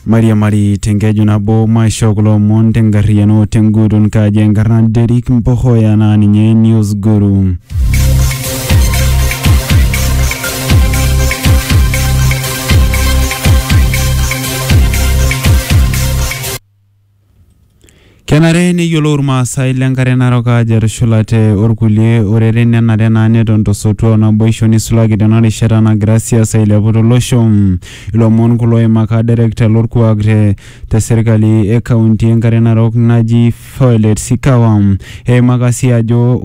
Mariamari tenkeju nabo maisho kulo omon tenkarriyiano tenguton kaji enkarna Derrick Mpohoya naa ninye News Guru. Kenare neyiolou Ilmaasai le Nkare Narok aajo etushulate olkulie oreren nenare naa neton to sotua o naboisho neisulaki tena rishata nagira siasa ailepu to losho. Ilomon kulo oimaka Direkta lo lkuak te serkali e kaunti e Nkare Narok naji Violet Sikawa. Eimaka sii ajo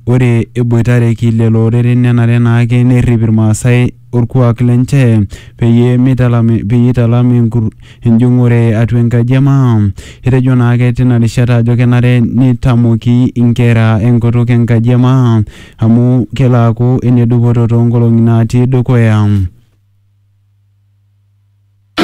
ore eboitareki lelo oreren nenare naake nerrip Ilmaasai olkuak lenche peyie meitalami peyie eitalami enkur- enjung'ore atua enkaji e maa. Etejo naake tina rishata ajo kenare neitamoki inkera enkutuk enkaji e maa amu kelo aaku enedupoto toonkolong'i naatii dukuya.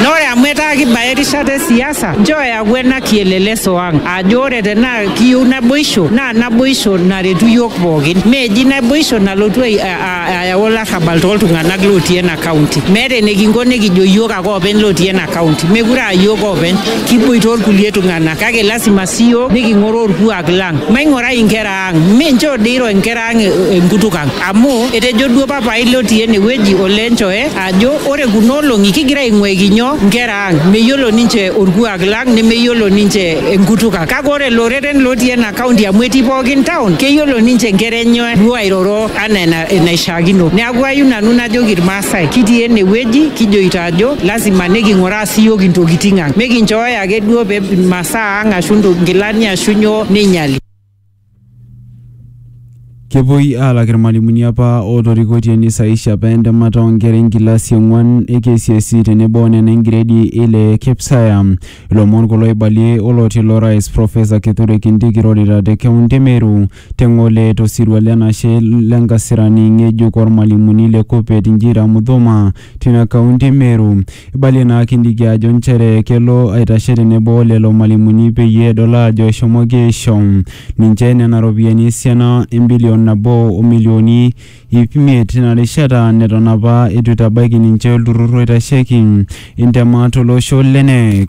Na ore amu etaa kibaya erishata e siasa, nchoo eyaku ena kieleleso ang ajo ore tenaa kiyieu naboisho naa naboisho naretu iyiook pookin. Meeji naboisho nalotu ai- a- a- ayau olarrabal tooltung'anak lootii ena kaunti. Meeta enikinko nikijo iyiook ake oopeny lootii ena kaunti. Meekure aa iyiook oopeny, kiboita olkulie tung'anak kake lasima sii iyiook niking'oru olkuak lang. Maing'orai inkera ang, mi nchoo dii eiro inkera ang enkutuk ang amu etejo duo papaai lotii ene wueji olee nchoo e ajo ore kuna olong'i kigira aing'uaiki nyoo nkera ang meyiolo ninche orkuak lang nemeyiolo ninche enkutuk ang kake ore loreren lotii ena kaunti amu etii pookin town keyiolo ninche nkera enye duo airoro anaa ena- enaishiakino neaku ayieu nanu najoki irmaasai kitii enewueji kijoito ajo lazima niking'uraa siyiok intokiting ang mikinchooyo ake duo pe imasaa ang ashu nto- nkilani ashu nyoo neinyiali Kepuoi aalak irmalimuni apa ootorikoitie neisaisha apa entemata oonkera enkilasi e ong'uan e KCSE tenebo o nena engiredi e ile e KPSEA. Ilomon kulo oibalie olotii ilo rais Professor Kithure Kindiki irorita te kaunti e Meru te Ng'ole to sirua le nashe le nkasirani ng'ejuk oo rmalimuni le KUPPET Njira Muthuma tina kaunti e Meru. Eibalie naa Kindiki ajo nchere kelo aitashe tenebo olelo malimuni peyie edol aajo eshomoki aisho ninche nena ropiyiani esiana embilion nabo o milioni iip imiet tina rishata neton apa eitu eitabaiki ninche olturrur oitasheki intemat to losho le Kneec.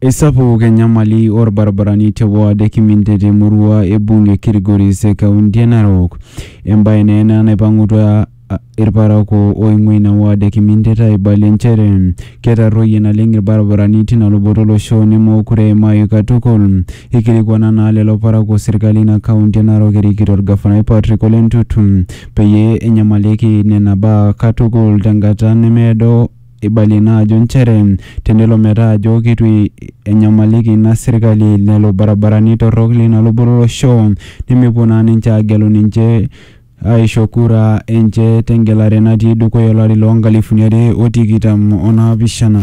Eisapuk enyamali orbaribarani te ward e Kiminte te murua e bunge Kilgoris e kaunti e Narok. Embae naa ena naipang'utua irparakuo oing'ua ina ward e Kimintet aibalie nchere ketarruoyie naleng irbaribarani tina luboto olosho nemookure eimayu katukul. Eikilikuana naa lelo parakuo serkali ina kaunti e Narok erikito orgafanai Patrick Ole Ntutu peyie enyamalieki nena baa katukul tenkata nemeedo. Eibalie ina ajo nchere tenelo metaa ajo keitu enyamaliki ina serkali lelo barabarani torrok leina luboto olosho nemepuo naa ninche aagelu ninche aaisho kura enche tengelare natii dukuya olari loo nkalifuni are o tikitam o naapishana.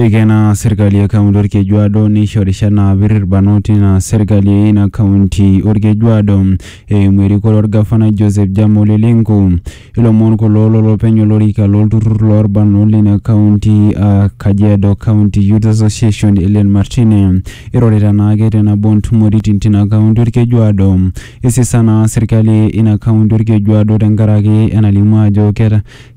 Eikena serkali e kaunti Olkejuado neisho rishat naapir ilbarnot ina serkali e ina kaunti Olkejuado eimu erikore olgafanai Joseph Jam Ole Lenku. Ilomon kulo lolopeny olorika lo lturrur loo lbarnot leina kaunti aa Kajiado County Youth Association Hellen Martine eirorita naake te nabo oo ntumoritin tina kaunti Olkejuado. Eisisa naa serkali ina kaunti Olkejuado tenkaraki enalimu ajo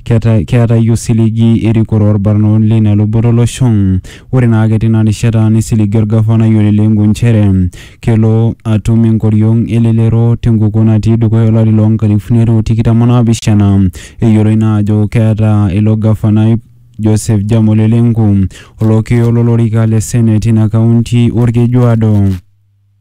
Keetae osiligi erikore olbarnot leina luboto olosho. Ore naake teina rishata nesiligi olgafanai Ole Lenku nchere kelo atum enkoriong elelero tenkukuo natii dukuya olari loo nkalifuni are o tikitam o naapishana. Eyioloi naa ajo keeta ilo gafanai Joseph Jam Ole Lenku olokiyo lo lorika le Senate teina kaunti Olkejuado.